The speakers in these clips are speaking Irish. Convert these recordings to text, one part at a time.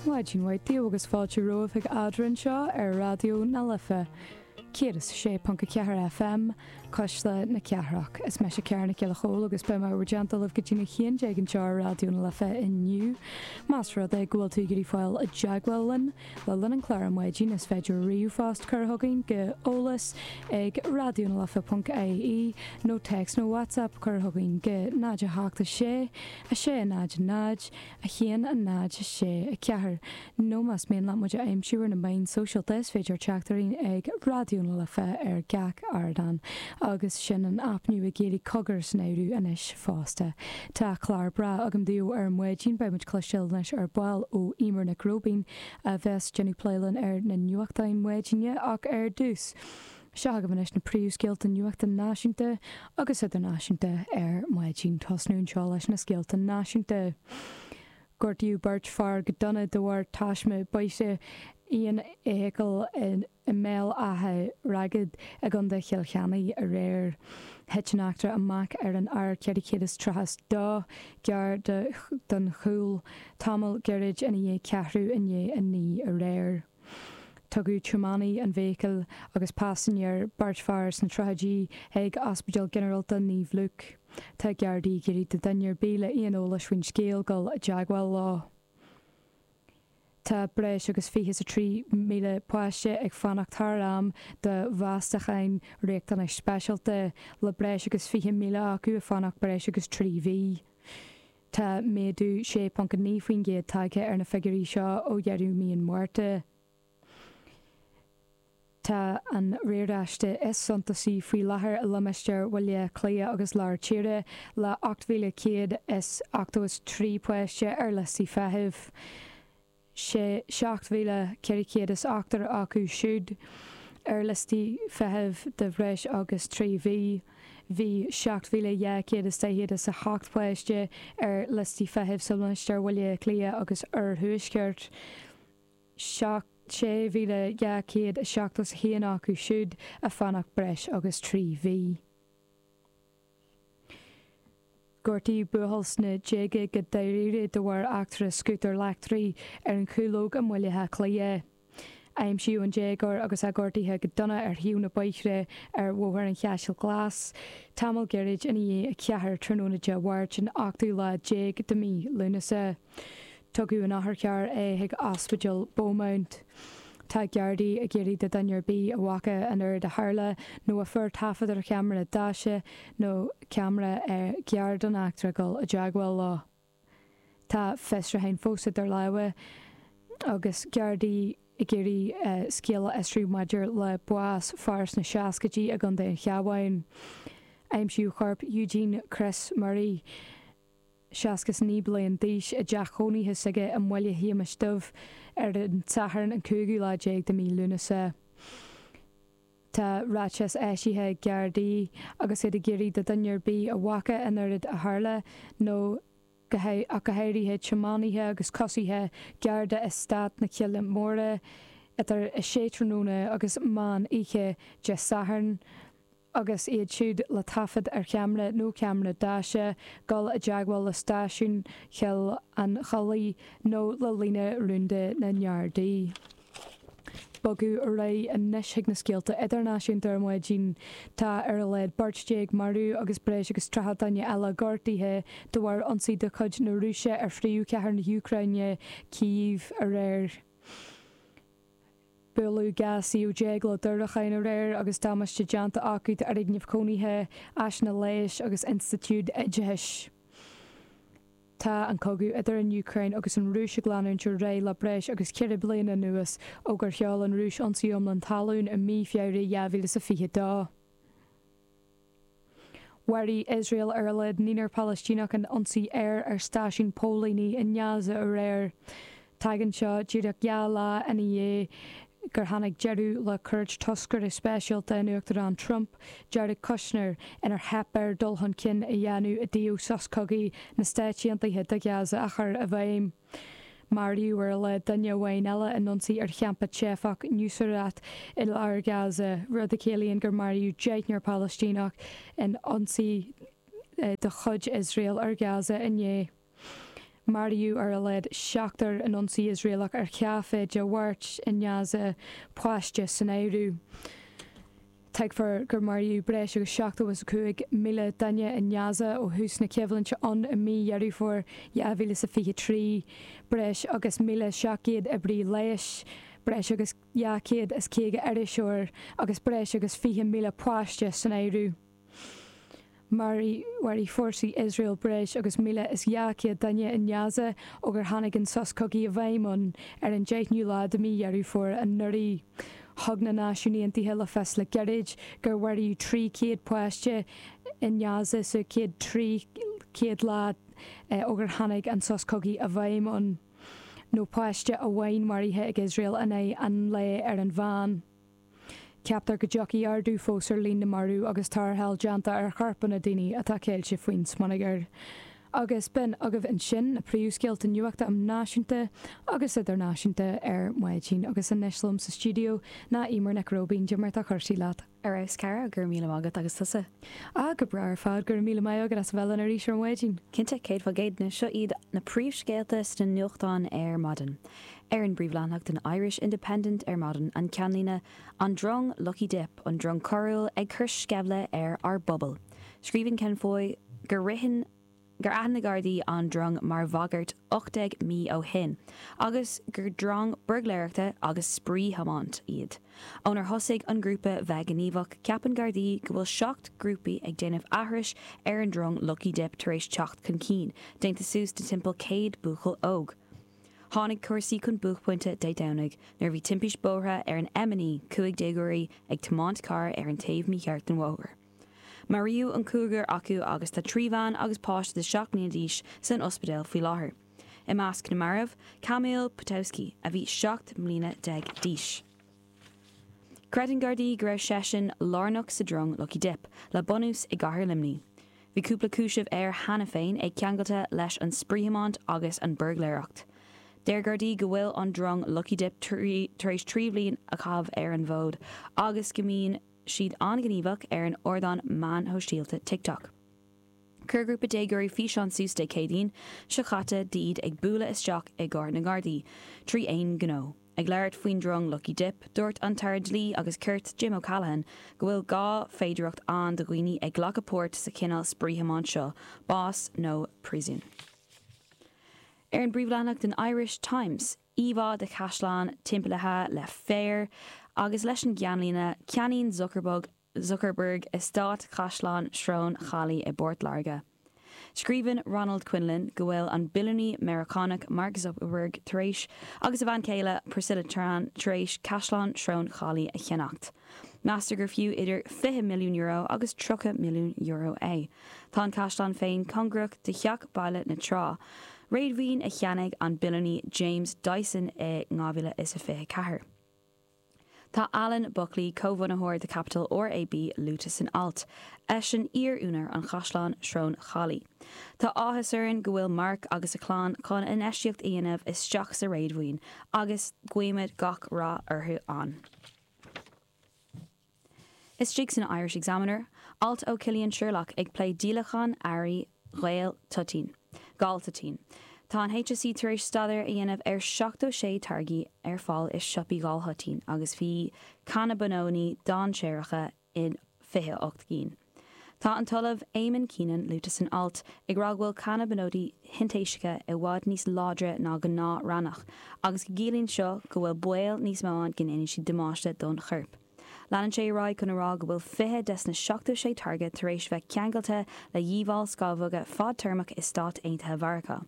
Maidin mhaith daoibh agus fáilte romhaibh chuig Eadrainn anseo ar Raidió na Life 106.4 FM, Cuisle na Cathrach. Is meise Ciara Nic Giolla Chomhaill agus beidh mé i bhur dteannta libh go dtína haon déag anseo ar Raidió na Life inniu. Más rud é go bhfuil tú ag iarraidh fáil i dteagmháil linn le linn an chláir ar maidin is féidir ríomhphost a chur chugainn go eolas ag raidionalife.ie nó text nó WhatsApp a chur chugainn go 0 7 6 6, 0, 0, 1, 0, 6, 4, Nó más mian leat muid a aimsiú ar na meáin shóisialta is féidir teacht orainn ag Raidió na Life ar gach ardán agus sin ar an aip nua éirí Cogar san áireamh anois fosta. Tá clár breá agam daoibh ar maidin beidh muid ag cloisteáil anois ar ball ó Emer Nic Róibín a bheas ag déanamh plé linn ar na nuachtáin maidine ach ar dtús, Seo agaibh anois na príomhscéalta nuachta náisiúnta agus idirnáisiúnta ar maidin. Ag tosnú anseo leis na scéalta náisiúnta. Gortaíodh beirt fhear go dona de bharr taisme bóthair aon fheithicle i mBéal Átha Ragad i gContae Chill Chainnigh aréir. Thit an eachtra amach ar an R432 gar don Chúil tamall gairid ina dhiaidh ceathrú i ndiaidh a naoi aréir. Tugadh tiománaí na feithicle agus paisinéir, beirt fhear, sna tríochaidí chuig Ospidéal Ginearálta Naomh Lúc. Tá Gardaí ag iarraidh ar dhuine ar bith le aon eolas faoin scéal dul i dteagmháil leo. Tá breis agus fiche 's a trí míle páiste ag fanacht thar am do mheastacháin riachtanas speisialta, le breis agus fiche míle acu ag fanacht breis agus trí mhí. Tá méadú 6.9% tagtha ar na figiúirí seo ó dheireadh mí an Mhárta. Tá an riaráiste is suntasaí faoi láthair i limistéar Bhaile Átha Cliath agus Lár Tíre le 8,183 páiste ar liostaí feithimh. 7,408 acu siúd ar liostaí feithimh de bhreis agus trí mhí, bhí 7,248 páiste ar liostaí feithimh sa limistéar Bhaile Átha Cliath agus Oirthuaisceart, 6,271 acu siúd ag fanacht breis agus trí mhí. Gortaíodh buachaill sna déaga go dáiríre de bharr eachtra scútair leictrigh ar an Chúlóg i mBaile Átha Cliath. Aimsíodh an déagóir agus é gortaithe go dona ar thaobh an bhóthair ar Bhóthar an Chaisleáin Ghlais tamall gairid ina dhiaidh 4 tráthnóna Dé Mháirt an ochtú lá déag de mhí Lúnasa. Tugadh in otharcharr é chuig Ospidéal Beaumont. Tá Geardaí ag iarraidh do dhuine ar bith a bhfaca an oiread a tharla nó a fuair taifead ar cheamara deaise nó ceamara ar ghar don eachtra dhul i dteagmháil leo. Tá fiosrúchán fós idir lámha ag na Geardaí ag iarraidh scéal a fhiosrú maidir le bás fear sna seascaidí i gContae an Chabháin. Aimsíodh corp Eugene Chris Murray. seasca is naoi bliain d'aois, i dteach chónaithe s'aige i mBaile Shéamais Dhuibh ar an tSatharn an cúigiú lá déag de mí Lúnasa. Tá ráiteas eisithe ag Gardaí agus iad ag iarraidh do dhuine ar bith a bhfaca an oiread a tharla nó ach go háirithe tiománaithe agus coisithe gar d'Eastát na Cille Móire idir 6 tráthnóna agus meán oíche Dé Sathairn agus iad siúd le taifead ar cheamra nó ceamra deaise, dul i dteagmháil le stáisiún Choill an Chollaigh nó le líne rúnda na nGardaí. Bogfaidh ar aghaidh anois chuig na scéalta idirnáisiúnta ar maidin. Tá ar a laghad beirt déag marbh agus breis agus triocha duine eile gortaithe de bharr ionsaí de chuid na Rúise ar phríomhchathair na hÚcráine, Cív, aréir. Buaileadh 12 suíomh le diúracháin aréir agus damáiste déanta acu d'fhoirgnimh chónaithe, áiseanna leighis agus institiúid oideachais. Tá an cogadh idir an Úcráin agus an Rúis ag leanúint ar aghaidh le breis agus ceithre bliana anuas, ó gur sheol an Rúis ionsaí iomlán talún i mí Feabhra 2022. Mharaigh Iosrael ar a laghad naonúr Palaistíneach in ionsaí aeir ar stáisiún póilíní i nGaza aréir. Tagann seo díreach dhá lá ina dhiaidh gur tháinig deireadh le cuairt toscaire speisialta an Uachtarán Trump, Jared Kushner, inar theip air dul chun cinn a dhéanamh i dtaobh sos cogaidh na Stáit Aontaithe do Ghaza a chur i bhfeidhm. Maraíodh ar a laghad duine amháin eile in ionsaí ar champa teifeach Nuseirat i lár Ghaza, rud a chiallaíonn gur maraíodh deichniúr Palaistíneach in ionsaí de chuid Iosrael ar Ghaza inné. Maraíodh ar a laghad seachtar in ionsaí Iosraelach ar chaifé Dé Máirt i nGaza, páiste san áireamh. Tuigtear gur maraíodh breis agus seachtó is a cúig míle duine i nGaza ó thús na coimhlinte ann i mí Dheireadh Fómhair dhá mhíle is a fiche trí breis agus míle seacht gcéad oibrí leighis, breis agus dhá chéad is caoga iriseoir agus breis agus fiche míle páiste san áireamh. Mharaigh fórsaí Iosrael breis agus míle is dhá chéad duine i nGaza ó gur tháinig an sos cogaidh i bhfeidhm ann ar an deichiú lá de mhí Dheireadh Fómhair anuraidh. Thug na Náisiúin Aontaithe le fios le gairid gur mharaíodh trí chéad páiste i nGaza sa chéad trí chéad lá ó gur tháinig an sos cogaidh i bhfeidhm ann, nó páiste amháin maraithe ag Iosrael in aghaidh an lae ar an mheán. Ceaptar go dtiocfaidh ardú fós ar líon na marbh agus tarrtháil déanta ar chorpanna daoine atá ceilte faoin smionagar. Agus b'in agaibh ansin na príomhscéalta nuachta um náisiúnta agus idirnáisiúnta ar maidin agus anois liom sa stiúideo ná Eimear Nic Róibín, Eimear conas atá cúrsaí leat? Ar fheabhas cara, go raibh míle maith agat agus tusa? Ah go breá ar fad, go raibh míle maith agat as a bheith linn arís ar maidin. Cinnte, céad faoin gcéad, seo iad na príomhscéalta sna nuachtáin ar maidin. ar an bpríomhleathanach den Irish Independent ar maidin, an ceannlíne An Drong Lucky Dip, An Drong Coiriúil ag cur sceimhle ar ár bpobal. Scríobhann Ken Foy gur ritheann, gur aithin na Gardaí an drong mar bhagairt 18 mí ó shin agus gur drong buirgléireachta agus spraoi-thiomáint iad. Ónar thosaigh an grúpa bheith gníomhach, ceapann Gardaí go bhfuil seacht grúpaí ag déanamh aithris ar an drong Lucky Dip tar éis teacht chun cinn, déanta suas de timpeall 100 buachaill óg. Tháinig cúrsaí chun buaicphointe Dé Domhnaigh nuair a bhí timpiste bóthair ar an M9 cúig déagóirí ag tiomáint carr ar an taobh mícheart den bhóthar. Maraíodh an cúigear acu agus tá trí bhean agus páiste de seacht mbliana d'aois san ospidéal faoi láthair. I measc na marbh, Kamil Potowski a bhí seacht mbliana déag d'aois. Creideann Gardaí go raibh seisean lárnach sa drong Lucky Dip le bunús i gcathair Luimní. Bhí cúpla cúiseamh air cheana féin, é ceangailte leis an spraoithiomáint agus an buirgléireacht. Deir Gardaí go bhfuil an drong Lucky Dip tar éis trí bhliain a chaitheamh ar an bhfód agus go mbíonn siad an-ghníomhach ar an ardán meán shóisialta TikTok. Chuir grúpa déagóirí físeán suas Dé Céadaoin seo caite d'iad ag bualadh isteach i gcarr na nGardaí trí aon ghnó. Ag labhairt faoin drong Lucky Dip, dúirt an tAire Dlí agus Cirt, Jim O'Callaghan, go bhfuil dhá féidireacht ann do dhaoine ag glacadh páirt sa chineál spraoi thiomáint seo, bás nó príosún. Ar an bpríomhleathanach den Irish Times, íomhá de chaisleán timpeallaithe le féar agus leis an gceannlíne, Ceannaíonn Zuckerbug Zuckerberg, Eastát Chaisleán Shrón Chaillí i bPort Láirge. Scríobhann Ronald Quinlan go bhfuil an billiúnaí Meiriceánach Mark Zuckerberg tar éis, agus a bhean chéile Priscilla Tran tar éis, Caisleán Shrón Chaillí a cheannacht. Meastar gur fiú idir €20 milliún agus €30 milliún é. Tá an caisleán féin cóngarach do Theach Baile na Trá, réadmhaoin a cheannaigh an billiúnaí James Dyson i 2024. Tá Alan Beechinor, comhbhunaitheoir de Capital RAB luaite san alt. Eisean iar-úinéir an Chaisleán Srón Chaillí. Tá áthas orainn go bhfuil Mark agus a chlann chun infheistíocht a dhéanamh isteach sa réadmhaoin agus guímid gach rath orthu ann. Istigh san Irish Examiner, alt ó Chillian Sherlock ag plé díolachán earraí galtoitín, galtoitín. Tá an HSE tar éis staidéar a dhéanamh ar 76 táirgí ar fáil i siopaí ghaltoitín agus bhí cannabanóidí dainséaracha in 28 gcinn. Tá an tOllamh Eamonn Keenan luaite san alt ag rá go bhfuil cannabanóidí shintéiseacha i bhfad níos láidre ná gnáth-raithneach agus go gciallaíonn seo go bhfuil baol níos mó ann go ndéanann siad damáiste don chorp. Leanann sé ar aghaidh chun a rá go bhfuil 20 des na 76 táirge tar éis bheith ceangailte le dhíobháil scámhóga fadtéarmach i Stáit Aontaithe Mheiriceá.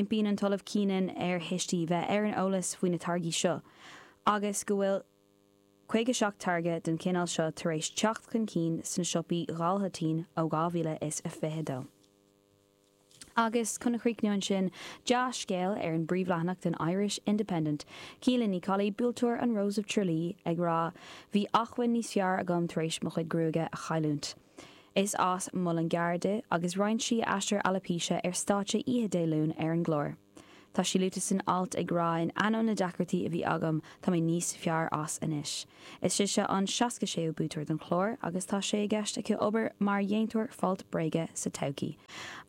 Impíonn an tOllamh Keenan ar thuistí bheith ar an eolas faoi na táirgí seo agus go bhfuil 57 táirge den chineál seo tar éis teacht chun cinn sna siopaí ghaltoitín ó 2022. Agus chun a chríochnú ansin dea-scéal ar an bpríomhleathanach den Irish Independent, Caoilfhionn Ní Choiligh, buaiteoir an Rose of Tralee, ag rá, Bhí ach mhuinín níos fearr agam tar éis mo chuid gruaige a chailliúint. Is as Muileann gCearr di agus roinn sí aistear alóipéise ar stáitse oíche Dé Luain ar an gclár. Tá sí luaite san alt ag rá in ainneoin na deacrachtaí a bhí agam tá mé níos fearr as anois. Is é seo an seasca séú buaiteoir don chlár agus tá sé i gceist aici obair mar dhéantóir folt bréige sa todhcaí.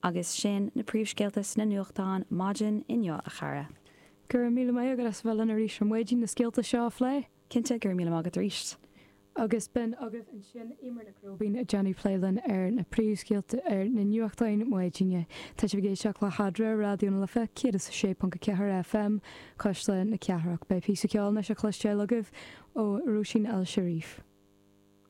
Agus sin na príomhscéalta sna nuachtáin maidin inniu a chara. Go raibh míle maith agat as a bheith linn arís ar maidin na scéalta seo a phlé. Cinnte, go raibh míle maith agat arís. Agus b'in agaibh ansin, Emer Nic Róibín ag déanamh plé linn ar na príomhscéalta ar na nuachtáin maidine. Tá sibh ag éisteacht le hAdhmhaidin, Raidió na Life 106.4 FM, cuisle na cathrach. Beidh píosa ceoil anois a chloisteáil agaibh ó Róisín El Cherif.